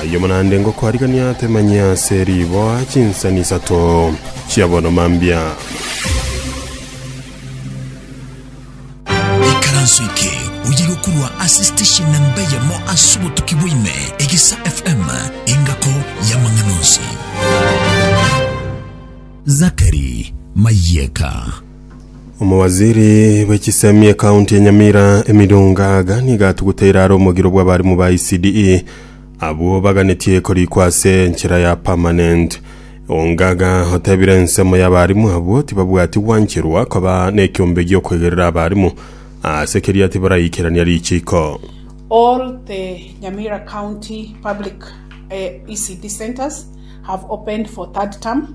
Ayio naende ngokoarigania temanyia ase riboa chinsani isato chia bono mambia. Ekaranso eke oye gokorwa ase station namba eyemo ase obotuki bwaime, Egesa FM, engako y'amang'ana onsi. Zachary Mayeka. Omowaziri bwe chisemi ekaunti ya Nyamira Emily Ongaga nigo atuguteire are omogiro bw'abarimu ba ECDE abwo baganetie korikwa ase enchera ya permanent. Ongaga otebire ensemo y'abarimu abwo tibabwati gwancherwa koba nekiombe gi'okwegerera abarimu ase keria tibaraikerania richiko. All the Nyamira County Public ECD Centres have opened for third term.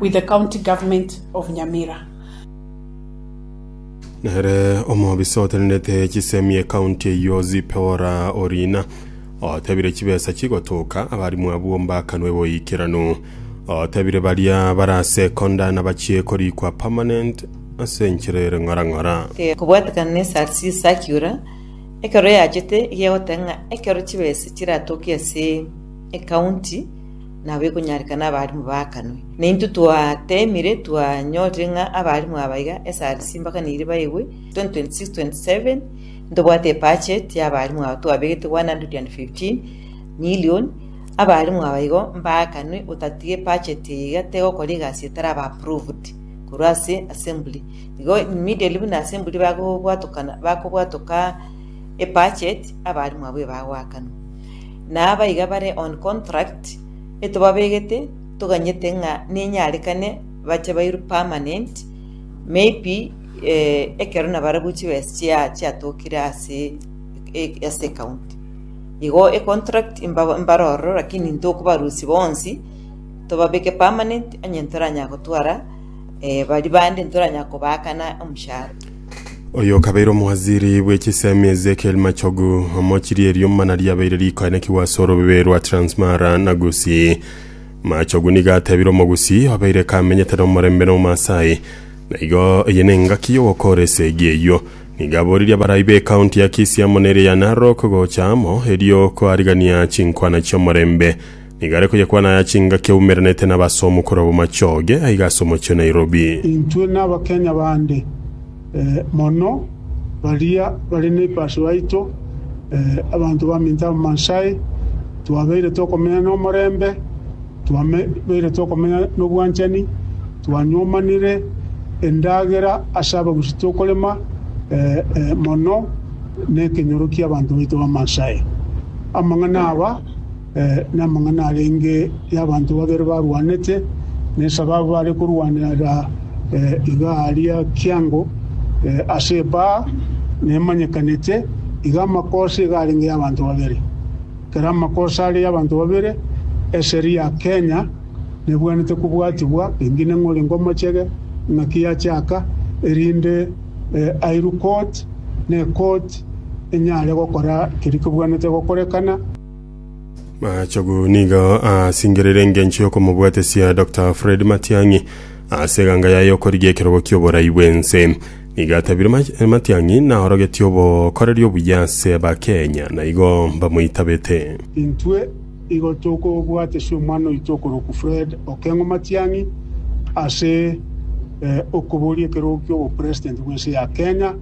with the county government of Nyamira. Nere omobisa otenenete chisemi ecounty eyio Zipora Orina otebire chibesa chigotoka abarimu abwo mbakanwe boikeranu. Otebire baria bara sekonda nabachie korikwa permanent ase enchera ere ng'ora ng'ora. Kobwatekana ne SRC circular ekero yachete egegoteba ng'a ekero chibesa chiratoke ase ecounty nabo ekonyareka nabarimu baakanwe. Na intwe twateemire twanyorire ng'a abarimu aba iga esari simbakaneirie baegwe, 2026-27 ntobwate ebudget y'abarimu aba twabegete 115 million, abarimu aba igo mbaakanwe otatiga ebudget eye iga tegokora egasi etaraba approved korwa ase assembly. Igo immediately buna assembly bagobwatokana bakobwatoka ebudget abarimu abwo ebagoakanwa. na abaiga bare on contract etobabegete toganyete ng'a nenyarekane bache bairwe permanent maybe ekero nabarabwo chiwesi chia chiatokire ase ase ecounty igo econtract mba mbare ororo lakini ntokobarusia bonsi tobabeke permanent onye ntoranya gotwara baria bande ntoranya kobaakana omoshahara. Oyo okabeire omowaziri bwe chisemi Ezekiel Machogu omochirie eriomba na riabeire rikoenekigwa ase orobebe rwa Transmara na Gusii. Machogu nigo atebire Omogusii obeire kamenyete nomorembe na Omasai, na igo eye nengaki y'ogokora esegi eyio. Nigo aboririe abarai b'ecounty ya Kisii amo neria ya Narok gocha amo erio koarigania chinkwana chi'omorembe. Nigo are koyekwana aya chingaki aumeiranete na abase omokoro b'amachoge aiga ase omochie o Nairobi. Intwe n'Abakenya bande mono baria bare neipashu yaito, abanto baminto Abamaasai, twabeire tokomenya nomorembe, twabeire tokomenya nobwanchani, twanyomanire endagera ase Abagusii tokorema mono nekenyoro kiabanto baito Abamaasai. Amang'ana aba. Namang'ana arenge y'abanto babere barwanete, na esababu bare korwanera iga aria kiango ase ebaa nemanyekanete, iga amakosa iga arenge y'abanto babere. Ekero amakosa are y'abanto babere, eseri ya Kenya nebwenerete kobwatibwa pengine ng'a orenge omochege, ng'aki yachaka, erinde airukoti na ekoti enyare gokora keria kebwenerete gokorekana. Machogu nigo aasingereire engencho y'okomobwatesia Dr. Fred Matiang'i ase eganga yaye y'okorigia ekerogo ki'oborai bw'ense. Nigo atabire Ma- Matiang'i naorogetie obokoreri obuya ase Abakenya na igo mbamoitabete. Intwe igo tokobwatesia omwana oito okorokwa Fred Okeng'o Matiang'i ase eh, okoboria ekerogo ki'obopresident bw'ense ya Kenya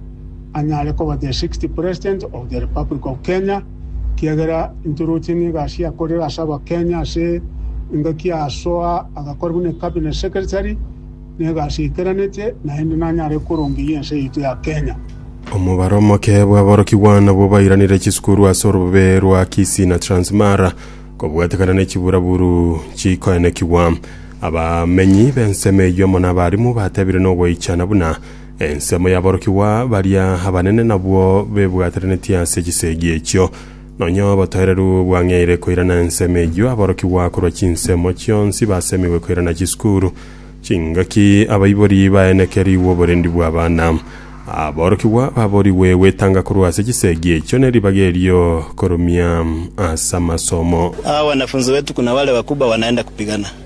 anyare koba the 60th President of the Republic of Kenya. kiagera intwe roche n'egasi yakorire ase abakenya ase engaki yasoa agakora buna cabinet secretary negasi eikeranete naende nanyare korongeria ense yaito ya Kenya. Omobaro omoke bw'aborokigwa nabwo bairanire chisukuru ase orobe rwa Kisii na Transmara kobwatekana ne chiburaburu chikoenekigwa. Abamenyi b'ensemo eyio amo nabarimu batebire nogoichana buna Ensemo y'aborokigwa baria abanene nabwo bebwateranetie ase chisegi echio. Nonya obotoereru bwang'eire koirana ensemo eyio aborokigwa korwa chinsemo chionsi basemigwe koirana chisukuru. Chingaki abaibori baenekerigwe oborendi bw'abana. Aborokigwa baborigwe gwetanga korwa ase chisegi echio ne ribaga erio korumia ase amasomo. Aa wanafunzi wetu kuna wale wakubwa wanaenda kupigana.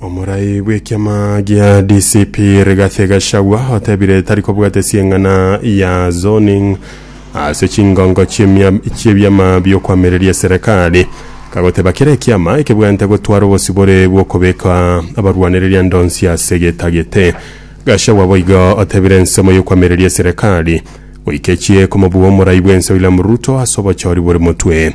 Omorai bw'ekiama gia DCP Rigathi Gachagua otebire tari kobwate sieng'ana ya zoning ase chingongo chi'emia- chi'ebiama bi'okwamereria serikali kagoteba kera ekiama ekebwate gotwara obosibore bw'okobeka abarwanereria ndonsi ase getagete Gachagua boigo otebire ensemo y'okwamereria serikali goikechie komobua omorai bwense William Ruto ase obochori bore motwe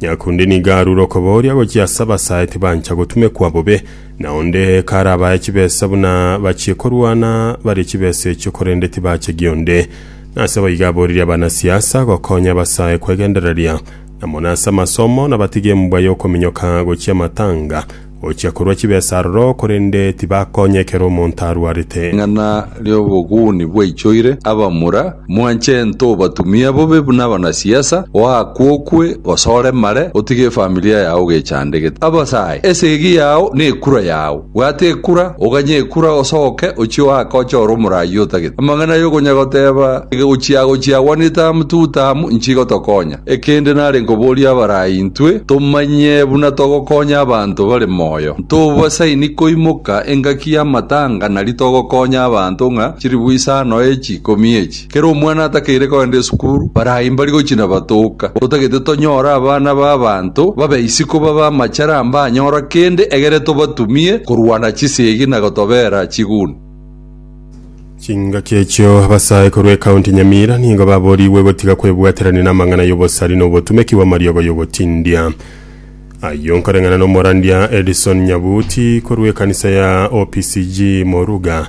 Nyakunde nigo arure okobooria gochia ase abasae tibancha gotumekwa bobe, na onde karabae chibesa buna bachie korwana barie chibesa echio korende tibache gionde. Nase boigo aboririe abanasiasa gokonya abasae kwegendereria, na mono ase amasomo, na batige embwa y'okominyoka gochia amatanga, Ochia korua chibesa aroro, korende tibakonyekera omonto arwarete. Ring'ana ri'oboguni bwaichoire abamura, mwanche ento obatumia bobe buna abanasiasa, oakwe okwe, gose oremare, otige efamilia yao ogechandegete. Abasae, esegi yao nekura yao. Bwata ekura, oganye ekura, osoke, ochie oake ochore omura ayio otagete. Amang'ana ay'okonyagoteba, Gochia gochia gwanete amo tugutaamu, inchigotokonya. Ekende nare nkoboria abarai intwe tomanye buna togokonya abanto bare moyo. Ntobasaini koimoka engaki y'amatanga nari togokonya abanto ng'a chiribu isano echi ikomi echi. Kera omwana atakeire kogenda esukuru, barai mbari gochina batoka. Totagete tonyore abana b'abanto babe isiko babe amachera mbanyora kende egere tobatumie korwana chisegi na gotobera chiguni. Chingaki echio abasae korwa ekaunti Nyamira nigo baborigwe gotiga kwebwaterania namang'ana y'obosari na obotumeki bw'amariogo y'ogotindia. Ayio nkoreng'ana n'omorandia Edison Nyabuti korwa ekanisa ya OPCG Moruga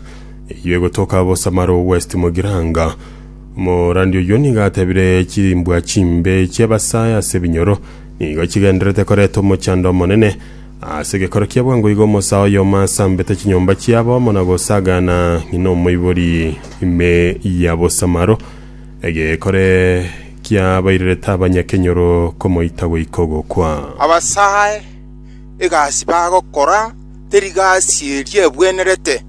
eyio egotoka Bosamaro West Mogiranga. Omorandia oyio nigo atebire chimbwa chimbe chi'abasae ase ebinyoro nigo chigendererete koreta omochando omonene Ase gekoro kia bwango igo omosaa oyomo asambete chinyomba chiabo amo na gosagana ng'ina omoibori ime ya bosamaro, egekore kiabairerete abanyakenyoro komoita goika ogokwa. Abasae, egasi bagokora teri gasi eria ebwenerete.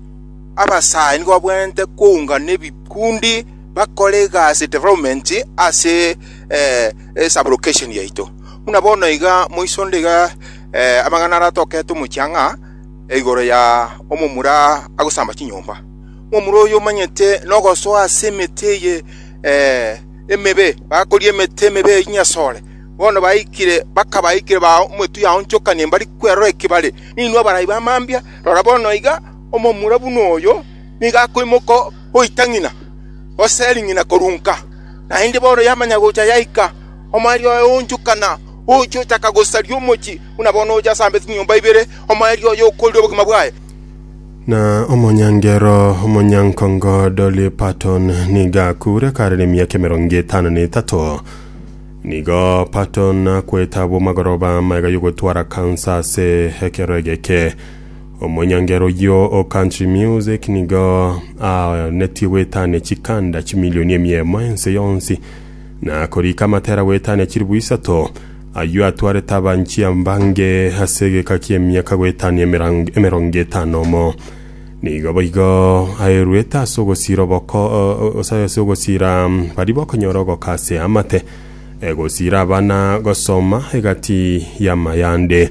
Abasae nigo babwenerete koungana ebikundi bakore egasi development ase eh, e sublocation yaito. Buna bono iga moisonde iga eh, amang'ana aratoke tomochie ang'a eh, igoro ya omomura agosamba chinyomba. Omomura oyo omanyete nogosoa ase emete eye eh, emebe, bakoria emete emebe ya chinyasore. Bono baikire bakabaikire ba omotu yaonchokanie mbari kwerora ekebare. Ninwe abarai bamambia, rora bono iga omomura buna oyo niga akoimoka goita ng'ina, gose eri ng'ina korunka. Naende bono yamanya gocha yaika, omoerio oye oonchokana, ochia ochaka gosaria omochie, buna bono ocha asambe chinyomba ibere, omoerio oye okoorire obogima bwaye. Na omonyangero omonyankongo Dolly Parton nigo akuure kare nemiaka emerongo etano na etato. Nigo Parton akwete abwo magoroba amaiga y'ogotwara kansa ase ekero egeke. Omonyangera oyio o Country Music nigo anetie gwetania chikanda chimilioni emiemo ense yonsi, na korika amatera gwetania chilifu isato. Ayio atwarete abanchia mbange ase egeka ki'emiaka gwetania emerang- emerongo etano omo. Nigo boigo aeruete ase ogosira oboko ase ase ogosira mm, baria bakonyora ogoka ase amate, egosira abana gosoma egati y'amayande.